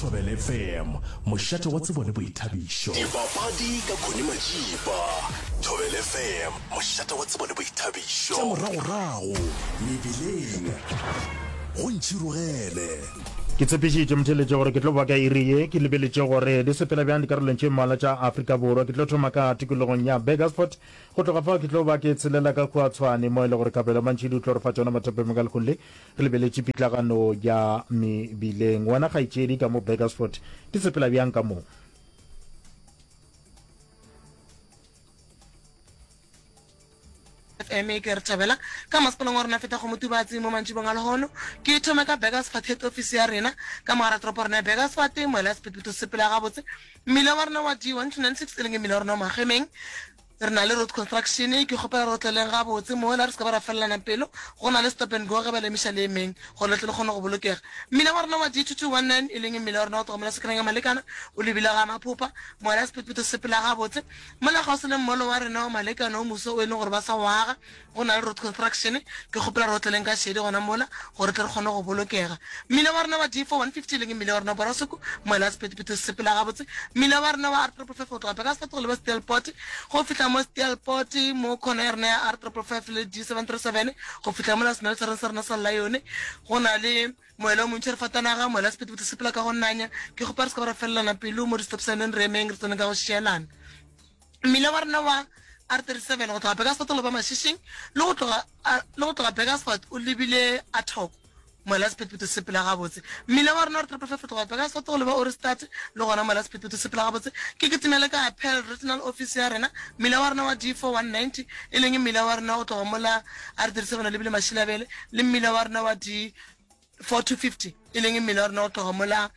Thobela FM, mošate wa tsebo le boithabišo. Dipapadi ka Connie Majipa. Thobela FM, mošate wa tsebo le boithabišo. Tša moragorago mebileng go ntšhirogele. Ke tshepišitše motheletše gore ke tlo boa ka iri ye. Ke lebeletše gore di sepela bjang dikarolong tše mmalwa tša Afrika Borwa. Ke tlo thoma ka tikologong ya Burgersfort. Go tloga fao ke tlo ba ke tshelela ka kua Tshwane mo e le gore Kabelo Mantšhidi o tlo re fa tšona mathapemeng ka lekgong le. Re lebeletše pitlagano ya mebileng. Wena kgaetšedi ka mo Burgersfort, ke sepela bjang ka mo? FM e ke re thabela ka masepalong wa rona feta go motubatsi mo mantšibong a lehono ke thome ka beggers fat head office ya rena ka mogara toropo rona ya beggers fat moela ya sephetphetho sepela gabotse mmila wa rona wa d 196 e leng e mmila wa rona wa magemeng Re na le road construction, ke kgopela re otleleng gabotse mola, re se ka ba ra felelana pelo. Go na le stop and go ge ba le emiša le emeng gore le tle le kgone go bolokega. Mmila wa rena wa D2219, e leng mmila wa rena wa go tloga mola Sekereng ya Malekana, o lebile ga Maphopha, mola sephetephete se sepela gabotse. Mola kgauswi le mmolo wa rena wa Malekana o moswa o e leng gore ba sa o aga, Go na le Road Construction, ke kgopela re otleleng ka šedi gona mola gore tle re kgone go bolokega. Mmila wa rena wa D4 150 leng mmila wa rena wa Borasoko, moela sephetephete se sepela gabotse. Mmila wa rena wa R555 go tloga Baker's Fort go leba Steelpoort, go fihla mo Steelpoort mo khona ya rena ya R555 le D737 go fihla mola semelotšhareng sa rena sa Lion. Go na le moela o montši re fatanaga, moela sephetephete se sepela ka go nanya. Ke kgopela re se ka ba ra felelana pelo mo di-stop sign-eng, re emeng re tsene ka go šielana. Mmila wa rena wa R37 go tloga Bekasfort go loba Mašišing le go tloga le go tloga Bekasfort o lebile a thoko moela sephethephethe se sepela gabotse. Mmila wa rena wa R555 go tloga Bekasfort go loba Ohrigstadt le gona moela sephethephethe se sepela gabotse. Ke kitimele ka ya Paarl Regional Office ya rena. Mmila wa rena wa D4190 e leng mmila wa rena go tloga mola R37 o lebile Mašilabele le mmila wa rena wa D. 4 to 50 e leng mmele wa rena go tloga mola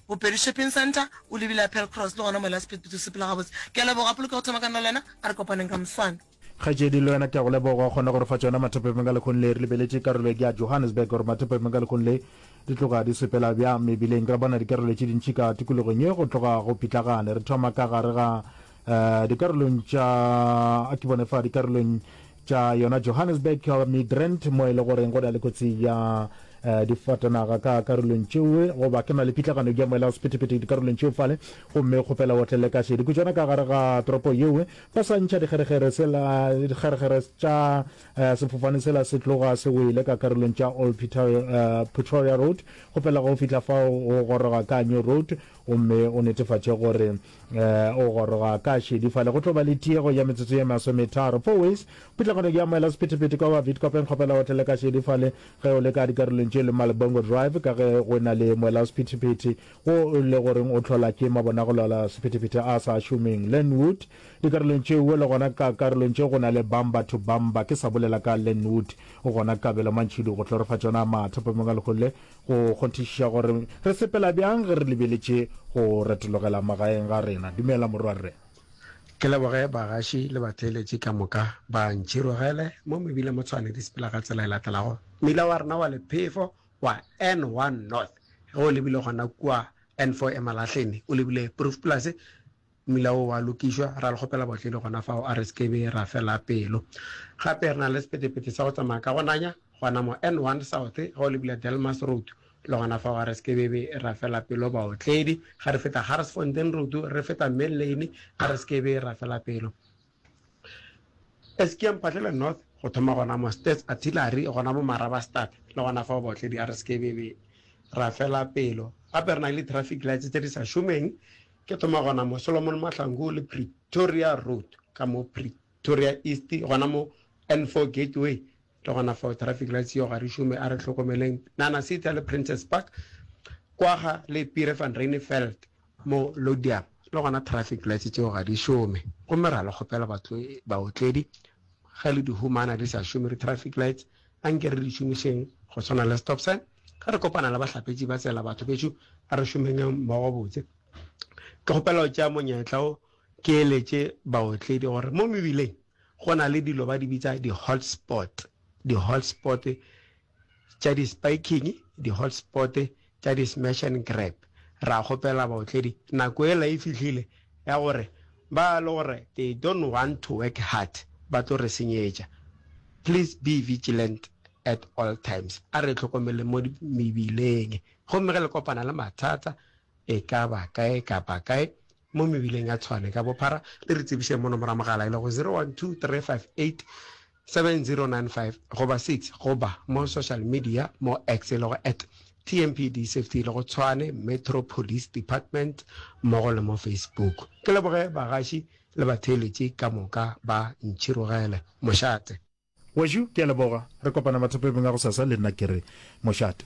bopedi shopping center o lebile apel cross le gona mola speed booth o sepela gabotse ke a leboga poloke go thoma ka nna le wena a re kopaneng ka moswana Kgaetšedi le wena ke a go leboga gona gore fa tšona mathopepeng ka lekgong le re lebeletše karolo ye ke ya Johannesburg gore mathopepeng ka lekgong le di tloga di sepela bjang mebileng. Ra bona dikarolo tše dintši ka tikologong ye go tloga go pitlagane. Re thoma ka gare ga uh, dikarolong tša a ke bone fa dikarolong tša yona johannesburg uh, midrand mo e le goreng go na le kotsi ya uh, difatanaga ka karolong tšeo goba ke na le pitlagano ya moela o sephethephethe dikarolong tšeo fale gomme kgopela o tlele ka šedi kutšwana ka gare ga toropo yeo ba sa ntšha dikgeregere tša uh, sefofane sela se tloga se wele ka karolong tša old pretoria road kgopela go fihla fao o goroga ka new road gomme o netefatše gore Eh, o goroga ka šedi fale go tlo ba le tiego ya metsotso ye masometharo four ways pitlagano ke amoela sephethephethe kwa wa vitkopeng kgopela o tlele ka šedi fale ge o le ka dikarolong tše le malbongo drive ka ge go na le moela wa sephethephethe wo le goreng o tlhola ke mabonagolola sephethephethe a sa šomeng lenwood dikarolong tšeo le gona ka karolong tše go na le bamba to bamba ke sa bolela ka lenwood gona kabelo mantšhidi go tlorofatšona matha pamengwa leholle Go kgonthišiša gore re sepela bjang ge re lebeletše go retologela magaeng ga rena. Dumela, Morwarre. Ke leboge bagaši le batheeletši ka moka ba ntšhirogele mo mebila mo Tshwane. Di sepela ka tsela e latelago, Mmila wa rena wa lephefo wa N1 North ge o lebile gona kua N4 Emalahleni, o lebile Proefplaas, Mmila wo wa lokišwa, ra le kgopela bohle le gona fao a re se ke be ra fela pelo. Gape re na le sepetepete sa go tsamaya ka gonanya, gona mo N1 South, ge o lebile Delmas Road, le gona fao a re se ke be be ra fela pelo baotledi. Ge re feta Garsfontein Road, re feta Mill Lane, a re se ke be ra fela pelo. Eskia Mphahlele North go thoma gona mo Stats Artillery gona mo Marabastad le gona fao baotledi a re se ke be be ra fela pelo. Gape re na le traffic lights tse di sa šomeng ke thoma gona mo Solomon Mahlangu le Pretoria Road ka mo Pretoria East gona mo N4 Gateway Ke gona fao traffic lights yeo ga re šome, a re hlokomeleng Nana City le Princes Park kwaga le Piere van Reineveld mo Lodium. Le gona traffic lights tšeo ga di šome gomme ra le kgopela baotledi ge le di humana di sa šome di traffic lights a nke re di šomišeng go swana le stop sign ge re kopana le bahlapetši ba tsela. Batho bešo a re šomeng mmogo botse. Ke kgopela go tšea monyetla wo ke eletše baotledi gore mo mebileng Go na le dilo ba di bitsa di hot spot, di hot spot tša di spiking, di hot spot tša di smash and grab. Ra kgopela baotledi nako ela e fihlile ya gore ba le gore they don't want to work hard ba tlo re senyetša. Please be vigilant at all times, a re hlokomeleng mo mebileng gomme ge le kopana le mathata e ka ba kae kapa kae mo mebileng ya Tshwane ka bophara le re tsebišeng mo nomora mogala e lego 0123587095 goba 6 goba mo social media mo X e lego at TMPD Safety e lego Tshwane Metro Police Department mmogo le mo Facebook. Ke leboge bagaši le batheeletši ka moka ba Ntšhirogele Mošate. Wešu, ke a leboga. Re kopana mathopeng a gosasa le nna ke re mošate.